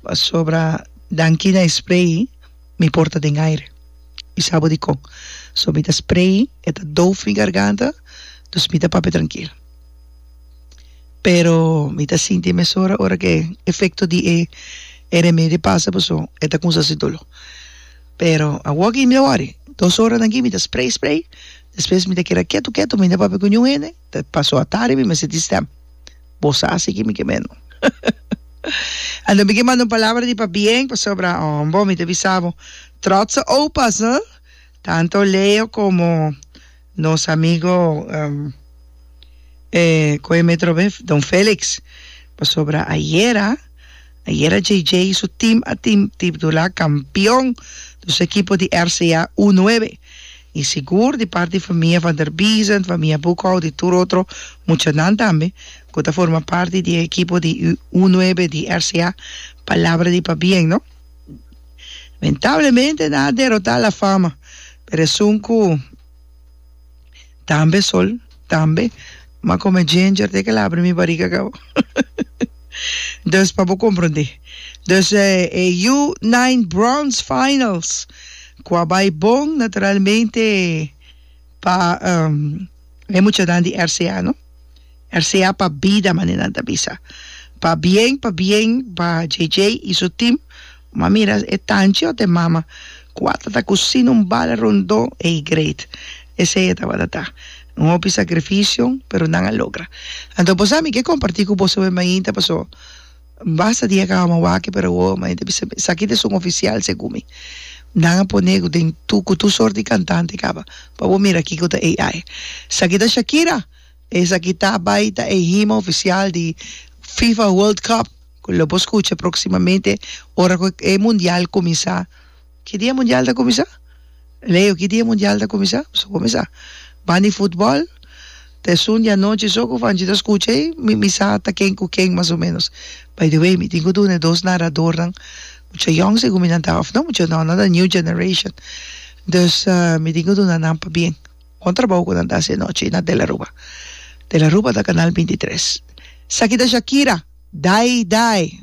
Pasobra danki na e spray mi por ta den aire. Mi sa bo dikon. So mi ta spray, e ta doof mi garganta, dus mi ta papia trankil. Pero mi ta sinti e mesora ora ku e efekto di e remedio a pasa paso e ta kuminsa hasi dolo. Pero awor aki mi ta wòri, dos ora danki mi ta spray, spray, despues mi ta keda ketu, ketu, mi na papia ku niun hende. Te paso atari mi mester di stem. Bo sa si ki mi ke mendo. Anto mi ke manda un palabra di pabien pasobra hombo mi ta bisa bo trotse opas ha tanto Leo komo nos amigo e kon e metro be Don Felix pasobra ayera Ayera JJ y su team a tin titbdula campeon do su equipo di RCA U nuebe y sigur di parti famia Van der Biesen, famia Boekhout y tur otro muchanan tambe cu ta forma parti di e equipo di U nuebe di RCA palabra di pabien no. Lamentablemente nan a derota La Fama per esun cu. Tambe sol tambe ma come ginger te kel abri mi bariga gau dus pa bo comprende dus e U nine bronze finals cu a bay bon naturalmente pa e muchanan di RCA no. Er sea pa bida mane nan ta bisa. Pa bien pa bien pa JJ y su team ma mira e tanchi ot e mama cu a ta ta cusina un bala rondo ey great esey e tabata ta. Un hopi sacrificio pero nan a logra. Anto bo sa mi ke comparti cu boso e mainta paso basta dia cu awor waki pero awor e mainta bisa esaki ta es un oficial segun mi. Nan a pone cu den cu tur sort di cantante caba pa bo mira kico ta AI. Esaki ta Shakira. Esaki ta bai ta e hima ofisial di Fifa World Cup ku lo por skucha proksimamente ora ku e mundial kuminsá. Ki dia e mundial ta kuminsá? Leo, ki dia e mundial ta kuminsá? Bo sabó mesa. Ban di futbòl ta e Sunde anochi so ku Fanchi ta skucha ei, mi mi sa ta ken ku ken mas o menos. By the way, mi tin ku duna e dos naradornan mucha yòn si guminantá òf no mucha nòna ta new generation. Dus mi tin ku duna nan pabien. Kon trabou ku nan ta hasi e nochi na De la Ruba? De la Ruba ta kanal bintitres. Esaki ta Shakira, Dai Dai.